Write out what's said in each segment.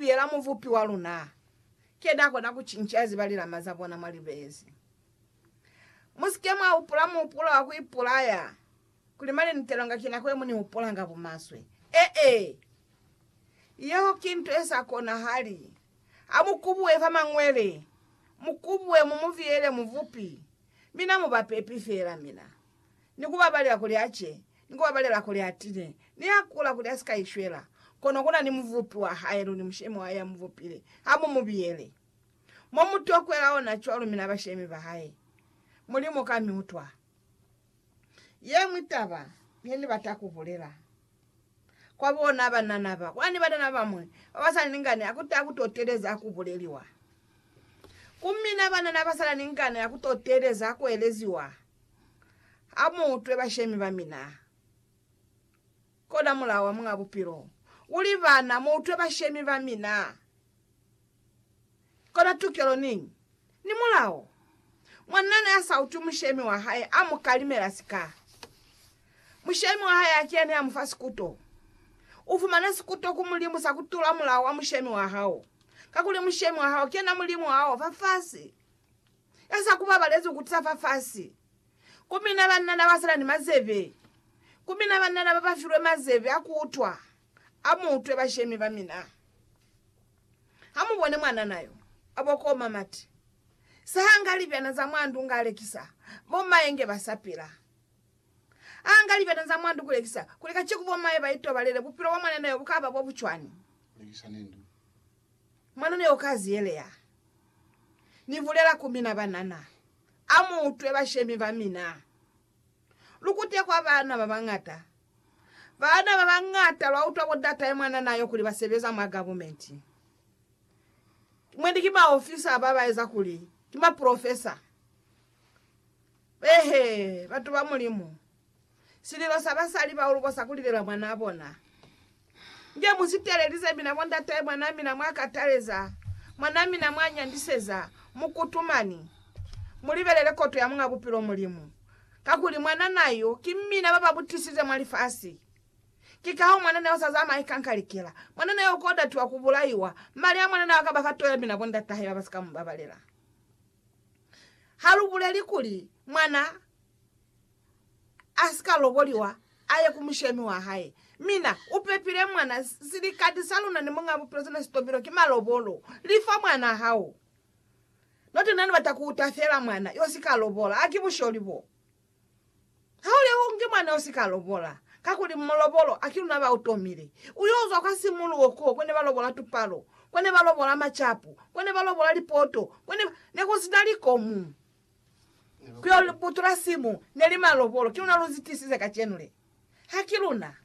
Yela Mubupi wa luna, ke n'a kona ku cinca ziba lilama za bona mwa libezi. Mu si ke mwa hupula muhupulo wa ku ipulaya, kuli mane ni telwanga ki nako ye mu ni hupulanga bumaswe. Ee, yeo ki nto ye sa konahali. Ha mu kubuhe fa Mañwele, mu kubuhe mu mu biyele Mubupi, mi na mu ba pepi fela. Mina. ni ku babalela kuli a ce, ni ku babalela kuli a tine, ni a kula kuli a si ka ishwela, kono ku na ni Mubupi wa hae luli Mushemi wa hae ya mu bupile, ha mu mu biyele. Mo mu tokwela ona cwalo mina bashemi ba hae. Mulimu ka mi utwa. Ye ñwi taba ye ni bata ku bulela kwa bona banana ba, kwani banana ba bamwi ba ba sa na ni ngani ha ku taha ku to teeleza ha ku buleliwa ku mina. Banana ba sa na ni ngani ha ku to teeleza ha ku eleziwa. Amuutwe bashemi bamina. Kona mulao wa Muñ'a Bupilo uli, Bana, muutwe bashemi bamina. Kona tukelo niñi ni mulao. Mwanna ne a sa utwi mushemi wa hae, a mu kalimela sika. Mushemi wa hae a kiya ne a mu fa sikuto. U fumana sikuto ku Mulimu sa ku tula mulao wa mushemi wa hao, kakuli mushemi wa hao ki yena Mulimu a o fa fasi. Eza ku babalezi ku tisa fa fasi, ku mina banna na ba sa na ni mazebe, ku mina banna na ba ba filwe mazebe a ku utwa, a mu utwe bashemi ba mina. Ha mu bone mwanana yo a bokoma mati, sa hanga libyana za mwa ndu nga lekisa, bo maye nge ba sa pila. A hanga libyana za mwa ndu ku lekisa, kuli ka ciku bo maye ba itobalele, bupilo bwa mwanana yo bu ka ba bo bu cwani? Mwanana yo u ka ziyeleha. Ni bulela ku mina, Banana, a mu utwe bashemi ba mina. Lu kute kwa baana ba bañata. Baana ba bañata lwa utwa bo datahe mwanana yo kuli ba sebeza mwa gavumenti. Mwendi ki maofisa ba ba eza kuli ki maprofesa. Eehe, batu ba Mulimu, Sililo sa basali ba ulubo sa kulilela mwanaa bona. Nge mu si teelelize mina bo ndatahe mwanaa mina mwa kataleza, mwanaa mina mwa nyandiseza, mu kutumani. Mu libelele koto ya Muñ'a Bupilo Mulimu, kakuli mwananaa yo ki mina ba ba mu tisize mwa lifasi. Ki kahoo mwananaa yo sa zamai ka nkalikela. Mwananaa yo ko datiwa ku bulaiwa. Mali a mwananaa a ka ba kato ya mina bo ndatahe ba ba si ka mu babalela. Ha lu buleli kuli mwana a si ka loboliwa, a ye ku mushemi wa hae. Mina, u pepile mwana. Silikati sa luna ni Muñ'a Bupilo sina sitobilo ki malobolo. Lifa mwana hao. Note na ni bata ku uta fela mwana yo si ka lobola. A ki busholi bo. Ha u lehungi mwana yo si ka lobola, kakuli malobolo a ki luna ba u tomile. U yo zwa kwa simuluho ko ko ne ba lobola tupalo, ko ne ba lobola macapu, ko ne ba lobola lipoto, ko ne ba. Ne ku si na likomu. Kyo butula simu neli malobolo ki luna luzi tisize kacenu le. Haki luna.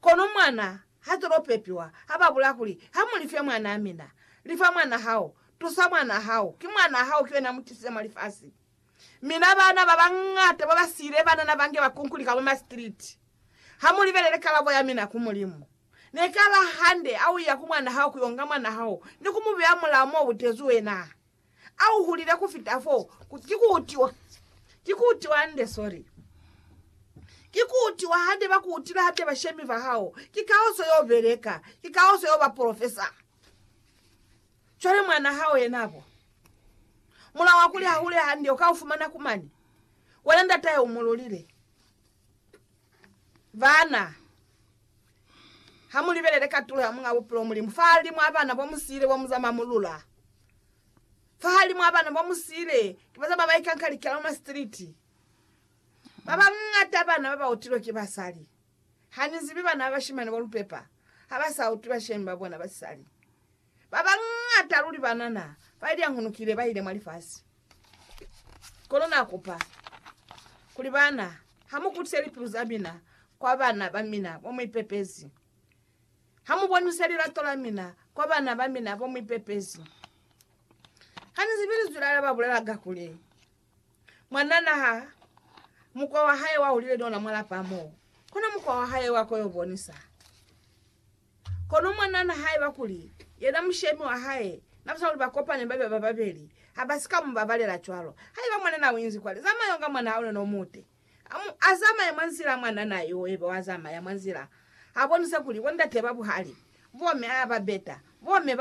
Kono mwana hatulo pepiwa haba bulaya kuli ha mu life mwanaa mina. Lifa mwana hao. Tusa mwana hao. Ki mwana hao ki wena mutisize mwa lifasi. Mina bana baba ngata baba siile banana bange ba kunkulika mwa ma street. Ha mu libelele kalabo ya mina ku Mulimu. Neka la hande ha uya ku mwana hao kuyo nga mwana hao ni ku mubeya mulao mo butezi wena. A u hulile ku fita fo. Ki ku utiwa. Ki ku utiwa hande, sorry. Ki ku utiwa hande, ba ku utile hande, bashemi ba hao. Ki ka o so yo beleka. Ki ka o so yo ba profesa. Cwale mwana hao yena bo. Mulao wa kuli ha hule hande, u ka u fumana ku mane. Wena ndatahe u mu lulile. Bana, ha mu libelele katulo ya Muñ'a Bupilo Mulimu fahalimu a bana bo mu siile bo mu za mamulula. Fahalimu a bana bo mu siile ki baza ba ba ikanka liki la luna sitiliti. Ba bañata bana ba ba utilwe ki basali. Ha ni zibi bana ba bashimani bo lu pepa ha ba sa utwi bashemi ba bona ba sisali. Ba bañata luli banana bailyanghunukile baile mwa lifasi. Kono Na kupa kuli baana ha mu kutise lipilu za mina kwa bana ba mina bo mu ipepezi, ha mu bonise lilato la mina kwa bana ba mina bo mu ipepezi. Ha ni zibi Linzwi la Lena ba bulelaga kuli, Mwanana ha mukwa wa hae wa hulile ni ona mwa lapa mo, kono mukwa wa hae wa ko yo bonisa. Kono mwa nahana haiba kuli yena mushemi wa hae na batona kuli ba kopane babe ba babeli, ha ba si ka mu babalela cwalo. Haiba mwanana u inzi kwale, zamaya unga mwana hao neno umute. A mu azamaya mwa nzila mwanana yo ebe wa zamaya mwa nzila, ha bonise kuli bo ndate ba buhali, bo me a ba beta, bo me ba